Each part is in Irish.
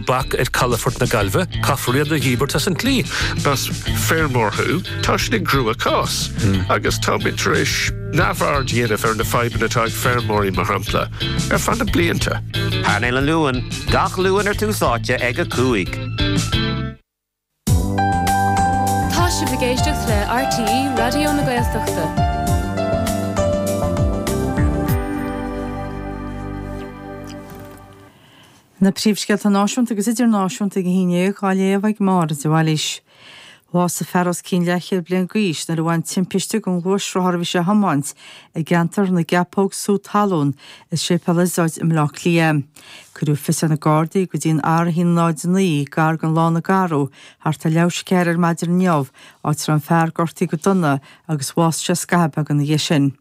bac ar calafort na Gaillmhe, caithfear iad a dhíbirt as an tslí. Más feirmeoir thú, tá sin i gcruachás, agus táimid tar éis neamhaird a dhéanamh ar na fadhbanna atá ag feirmeoirí, mar shampla, ar feadh na blianta. Painéal an Luain, gach Luan ar Tús Áite ag a cúig. Tá sibh ag éisteacht le RTÉ Raidió na Gaeltachta. Na príomhscéalta náisiúnta agus idirnáisiúnta go híné dhá léamh ag Máire de Bhailís. Bhásaigh fear os cionn leathchéad bliain d'aois nuair a bhain timpiste don ghluaisrothar a bhí sé a thiomáint i gceantar na gCeapóg Sú Talún i Séipéal Iosóid i mBleá Cliath. Cuireadh fios ar na Gardaí go dtí an R109, gar don Lána Garbh, thart ar leathuair tar éis a ceathair ar maidin inniu, áit a raibh an fear gortaithe go dona agus bhásaigh sé scaitheamh beag ina dhiaidh sin.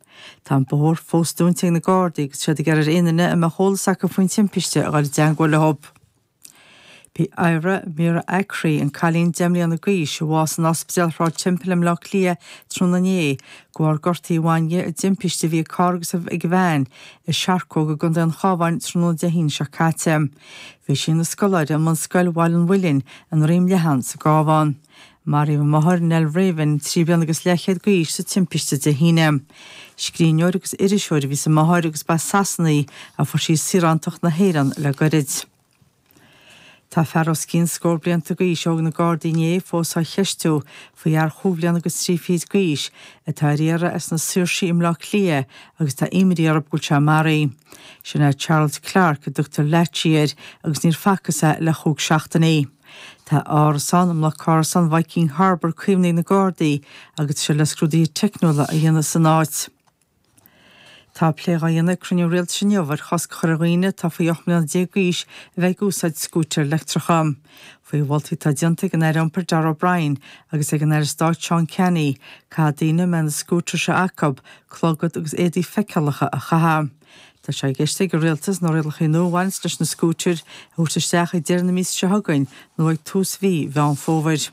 Tá an bóthar fós dúnta ag na Gardaí agus iad ag iarraidh ar aon duine a mbeadh eolas acu faoin timpiste a dhul i dteagmháil leo. B'í Eira Vera Acre, an cailín deich mbliana d'aois a bhásaigh in Ospidéal Shráid Temple i mBleá Cliath tráthnóna inné, de bharr gortuithe a bhain di i dtimpiste a bhí ag carr agus ag veain i Searcóg i gContae an Chábháin tráthnóna Dé hAoine seo caite. Bhí sí ina scoláire i mBunscoil Bhaile an Mhuilinn i nDroim Leathan sa gCábhán. Maraíodh a máthair, Nell Raven, trí bliana agus leathchéad d'aois sa timpiste Dé hAoine. Scríbhneoir agus iriseoir a bhí sa máthair agus ba as Sasana í ach fuair sí saorántacht na hÉireann le goirid. Tá fear os cionn scór blianta d'aois a thóg na Gardaí inné fós á cheistiú faoi fhear chúig bliana agus trí fichid d'aois atá ar iarraidh as na Saoirsí i mBleá Cliath agus tá imní orthu go bhfuil sé maraithe. Sin é Charles Clarke a dtugtar Latchy air agus níor facthas é le chúig seachtainí. Tá árasán i mbloc árasán Viking Harbour caomhnaithe ag na Gardaí agus tá siad le scrúduithe teicniúla a dhéanamh san áit. Tá plé dhá dhéanamh ag cruinniú rialtais inniu ar chosc a chur ar dhaoine atá faoi 18 mbliana d'aois a bheith ag úsáid scútair leictreacha. Faoi mholtaí atá déanta ag an Aire Iompair Darragh O'Brien agus ag an Aire Stáit Seán Canney, caithfidh daoine, a mbeidh na scútair seo acu, clogad agus éadaí feiceálacha a chaitheamh. Tá sé i gceist ag an Rialtas na rialacha nua a bhaineanns leis na scútair a thabhairt isteach ag deireadh na míosa seo chugainn nó ag tús mhí Mheán Fómhair.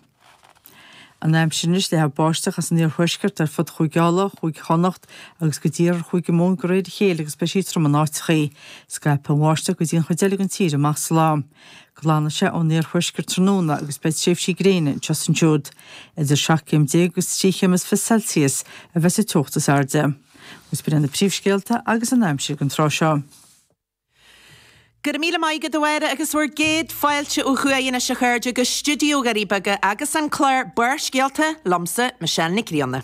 An aimsir anois leathfaidh báisteach as an iarthuaisceart ar fud Chúige Uladh, Chúige Chonnacht agus go dtí iarthar Chúige Mumhan go réir a chéile agus beidh sí trom in áiteachaí. Scaipfidh an bháisteach go dtí an chuid eile den tír amach sa lá. Glanfaidh sé ón iarthuaisceart tráthnóna agus beidh tréimhsí gréine anseo is ansiúd. Idir seacht gcéim déag agus trí chéim is fiche Celsius a bheidh sa teocht is airde. Agus b'iod iad na príomhscéalta agus an aimsir ag an tráth seo. Go raibh míle maith agat, a Mháire, agus bhur gcéad fáilte ó thuaidh anois, a chairde, go Stiúideo Dhoirí Beaga agus an clár Barrscéalta, liomsa, Michelle Nic Grianna.